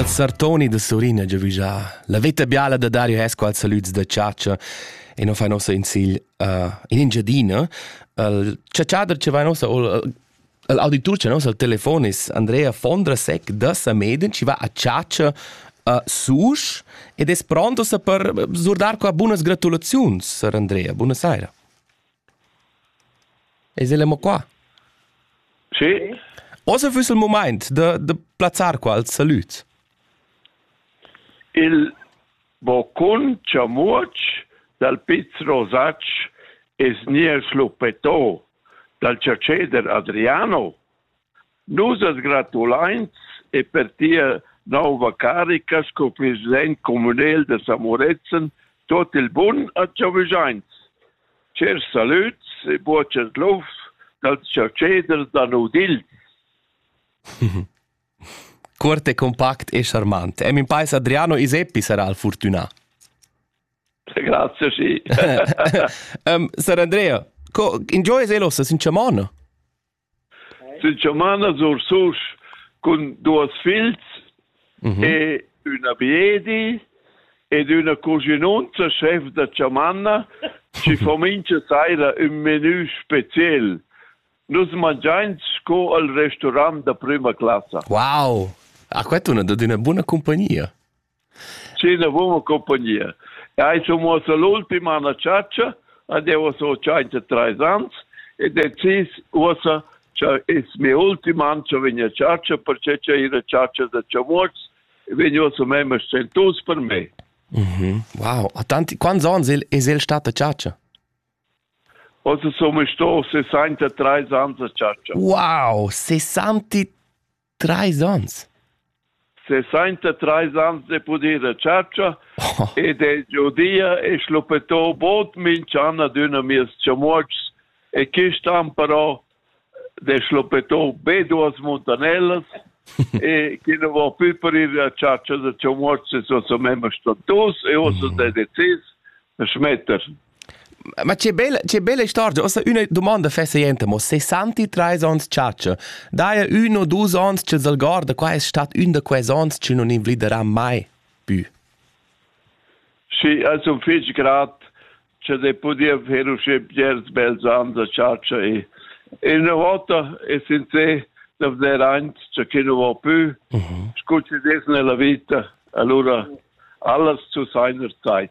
Als sartoni da Surin ha giavügià la veta biala da Dario Hesco als salüds da chatscha e non fa nossa in sigl uh, in Engiadina. Il chatschader che va nossa o l'auditur che nossa al telefon is Andrea Fondrasek da Sameden ci va a chatscha uh, susch ed es pronto sa per surdar qua bunas gratulaziuns, Sir Andrea. Buona saira. Eis el mo qua? Sì. Ossa füss il mumaint da, da plazzar qua als salüds. Il boccun chamuotsch dal Piz Rosatsch es gnir schluppetto dal chatscheder Adriano Nus as gratulains e per tia nouva carica sco president communel da Samorezen tuot il bun a Chavizains. Chers salüds e buochas lufs dals chatscheders da Nudil. Cuort e compact e charmant. E min pais Adriano Iseppi sarà al fortunà. Grazie, sì. um, Sir Andrea, co, enjoys elossa sin chamona? Sin chamanas Ursusch cun duas figls mhm. e üna biedi ed üna cuschinunza chef da chamanna chi fa mincha saira ün menü speciel. Nus mangiains sco al restaurant da prüma classa. Wow! Ah, questa è una, una buona compagnia. Sinavon compagnia. Ei sun uossa l'ultima anna chatscha ed eu so tschainta trais ans e decis uossa cha es mia ultima an cha vegn a chatscha perche cha ir a chatscha da chamuots vegn uossa memma stentus per me. Mhm. Wow, a tanti quants ans il es el stat a chatscha? Ossa sun sto 63 ans a chatscha. Wow, 63 Treis onns? 63 ans de pudir a chatscha oh. ed è giudia e schluppetò bod minch'an ad üna mies chamuotschs e quist an però de schluppetò be duas muntanellas e chi non vo più parir a chatscha da chamuotschs e so so memma stantus e ossa mm. de decis schmetter Ma che bella, che bella storia. Ossa üna domanda fesaienta, mo 63 ans chatscha. Daja ün o dus ons ch'el s'algorda, qua es stat ün da quels ons chi non invliderà mai pü. Sì, also fich grat che de podia fer usche bgers bels ans a chatscha e e una volta e sincer da veder aint che chi non vo pü, scu ci des nella vita, allura alles zu seiner Zeit.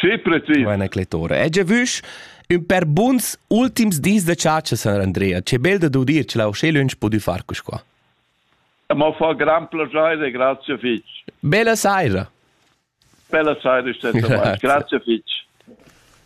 Sì, precis. Buona clettora. E già vusch ün per buns ultims dis da chatscha San Andrea. Che bel da dudir che la uschè lunsch pudü far cus qua. Ma fa gran piacere, grazie fitch. Bella saira. Bella saira, Stefan. grazie fitch.